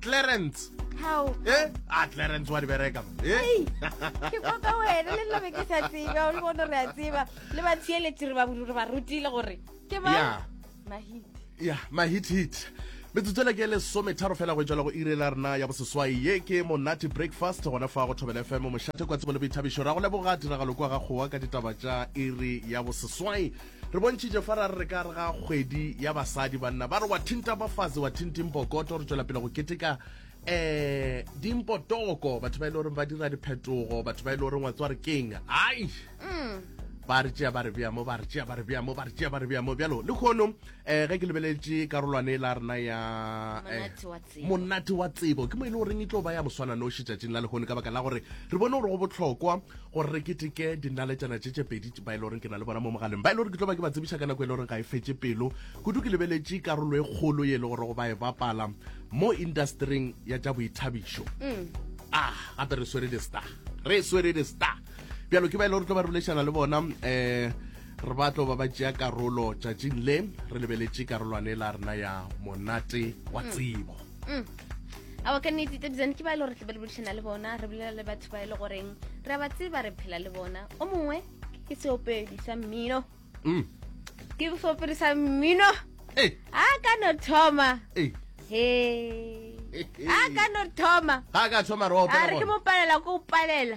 Clarence. How? Eh? Ah, Clarence wa di bereka. Eh? Ke kwa ka wena le nna be ke sa tsebe, o le bona re a tseba. Le ba tsieletsi re ba bulu re ba rutile gore ke ba. Yeah. Mahit. Yeah, mahit hit. metsotso le ke le some tharo fela go e tswela go irela rena ya boseswai ye ke monate breakfast gona fa go thobela fm mošate kwa tsebo le boithabišo ra go leboga tiragalo kwa ga kgowa ka ditaba tša iri ya boseswai Re bontšhitše fa ra re re ka re ga kgwedi ya basadi banna ba re wa thinta bafazi wa thinting pokoto re tšwela pele go keteka eh dimpotoko batho ba ile e goreng ba dira diphetogo batho ba ile e goreng wa tswa re keng ai ba re tšea ba re bea mo ba re tšea ba re bea mo ba re tšea ba re bea mo bjalo le kgono um ge ke lebeletše karolwane la rena ya eh, Monate wa Monate wa tsebo ke mo e le goreng e tlo ba ya moswananoši tšatšing la lehono ka baka la gore re bone gore go bohlokwa gore re keteke dinaletšana tše tše pedi ba e le goreng ke na le bona mo mogaleng ba e le gore ke tlo ba ke ba tsebiša ka nako e le goreng ga e fetše pelo kudu ke lebeletše karolo e kgolo ye e le gore go ba e bapala mo industering ya tša boithabišo mm. ah gape re swere di-star re swere di-star bjalo ke ba e le gore tlo ba re bolešana le bona um Re ba tlo ba ba tšea karolo tšatšing le re lebeletše karolwane la rena ya monate wa mm. tsebo mm. awa ka nnete tabizane ke ba e le gore re tlabe le bodišana le bona re bolela le batho ba e le goreng re a ba tseba re phela le bona o mongwe ke seopedi sa mmino mm. ke seopedi sa mmino a ka no thoma he a ka no thoma a ka thoma re opalela ko opalela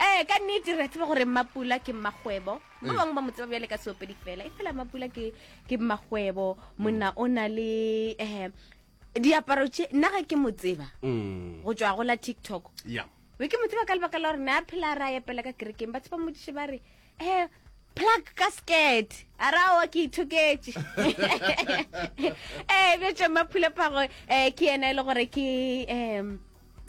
Ee, ka nnete re a tseba gore mmapula ke mmakgwebo ba eh. bangwe ba mo tseba bjale ka seopedi fela e fela mmapula ke ke mmakgwebo monna o na le um diaparo tše nna ga ke mo tseba mm. go tswa go la tiktok be ke mo tseba ka lebaka la gore ne a phela ra epela ka kerekeng ba tshepa modiše ba re eh, plug ka skirt a ra o ke ithoketse ee bjo tšwa maphulaphago um eh, ke ena e le gore ke um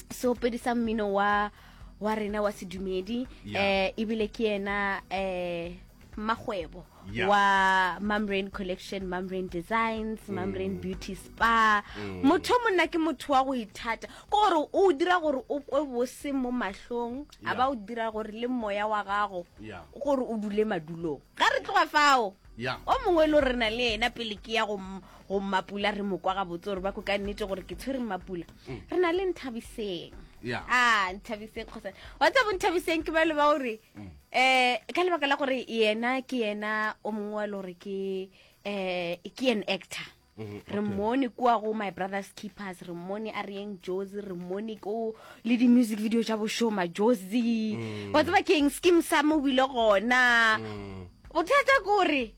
seopedi sa mmino wa wa rena wa sedumedi um eh, ebile ke ena um makgwebo yeah. wa mamrain collection mamrain designs mm. mamrain beauty spa mm. motho o monna ke motho wa go ithata ke gore o dira gore o kwe bose mo mahlong a Yeah. ba o dira gore le moya wa gago Yeah. gore o dule madulong ga re tloga fao Yeah. o mongwe lo rena le ena pele ke ya go m- go mmapula re mo kwa gabotse gore ba ko ka nnete gore ke tshwere mmapula re na le nthabiseng Mm. Yeah. a nthabiseng kgosa wa tsabo nthabiseng ke ba le ba gore Mm. um ka lebaka la gore yena ke yena o mongwe wa le gore ke um ke an actor Mm-hmm. re mmone kua go my brothers keepers re mmone a reyeng josi re mmone ko le di-music video tša bošoma josi mm. wa tseba keng skim sa mo bile gona mm. bothata kore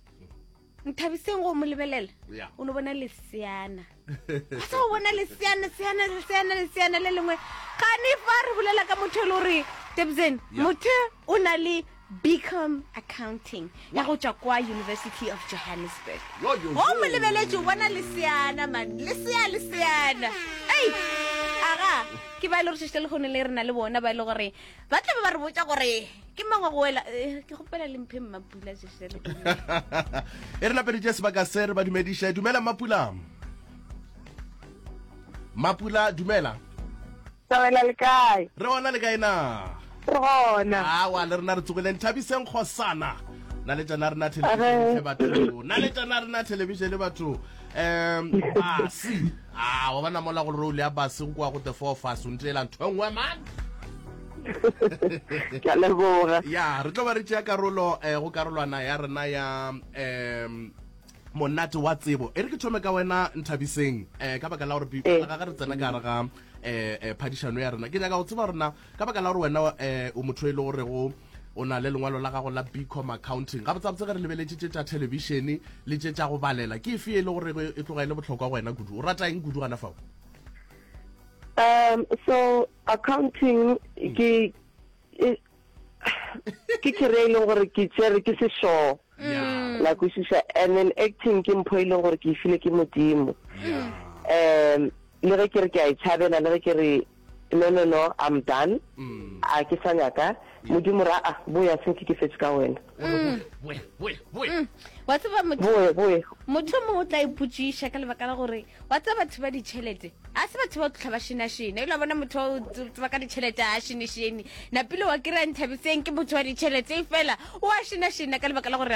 nthabiseng go mo lebelela o ne bona leseana a sa o bona leseana seana leseana leseana le lengwe gane fa re bolela ka motho e le gore tebzen motho o na le Bcom Accounting ya go tšwa kwa University of Johannesburg. Wo mo lebeletše o bona leseana man, lesea leseana. Ei! Aga, ke ba e le gore šešite lehono le re na le bona ba e le gore ba tla be ba re botša gore ke mang wa go wela. Eh, ke gopela le mphe mmapula šešite lehono. e re lapeditše sebaka se re ba dumediše dumela mmapula mmapula dumela Re gona le kae? Re gona le kae na? Re gona. Awa, le rena re tsogileng. Thabiseng Kgosana. Na le tšana rena television batho. Na le tšana rena television batho. Um, basi. Ah, wa bona mola go role ya basi go kwa go the four of us. Ntle ela ntho engwe man. ke a leboga ya re tlo ba re tšea karolo eh, go karolwana ya rena ya um monate wa tsebo e re ke thome ka wena nthabiseng um ka baka la gore eh. ga re tsena ka gare ga eh, eh phadišano ya rena ke nyaka go tseba rena ka baka la gore wena eh o motho e le gore go o na le lengwalo la gago la bcom accounting ga botsabotse ge re lebeletse tše tša thelebišene le tše tša go balela ke efe e le gore e tloga e le botlhokwa go wena kudu o rata eng kudu gana fao um so accounting ke e ke kere e leng gore ke tsere ke sešoo mm. la kwešiša and then acting ke mpho e leng gore ke e file ke modimo um le ge ke re ke a e tšhabela le ge ke re no no no i'm done mm. a ke sa nyaka modimo ra a ah, boya senke ke fetse ka wena Mm. Mm. wa tseba motho o mongwe o tla ipotsiša ka lebaka la gore wa tseba batho ba ditšhelete a se batho ba tlhotlha ba šenašene ela bona motho o tseba ka ditšhelete a šenešene napile wa kry-a nthabiseng ke motho wa ditšhelete e fela o a šenašena ka lebaka la gore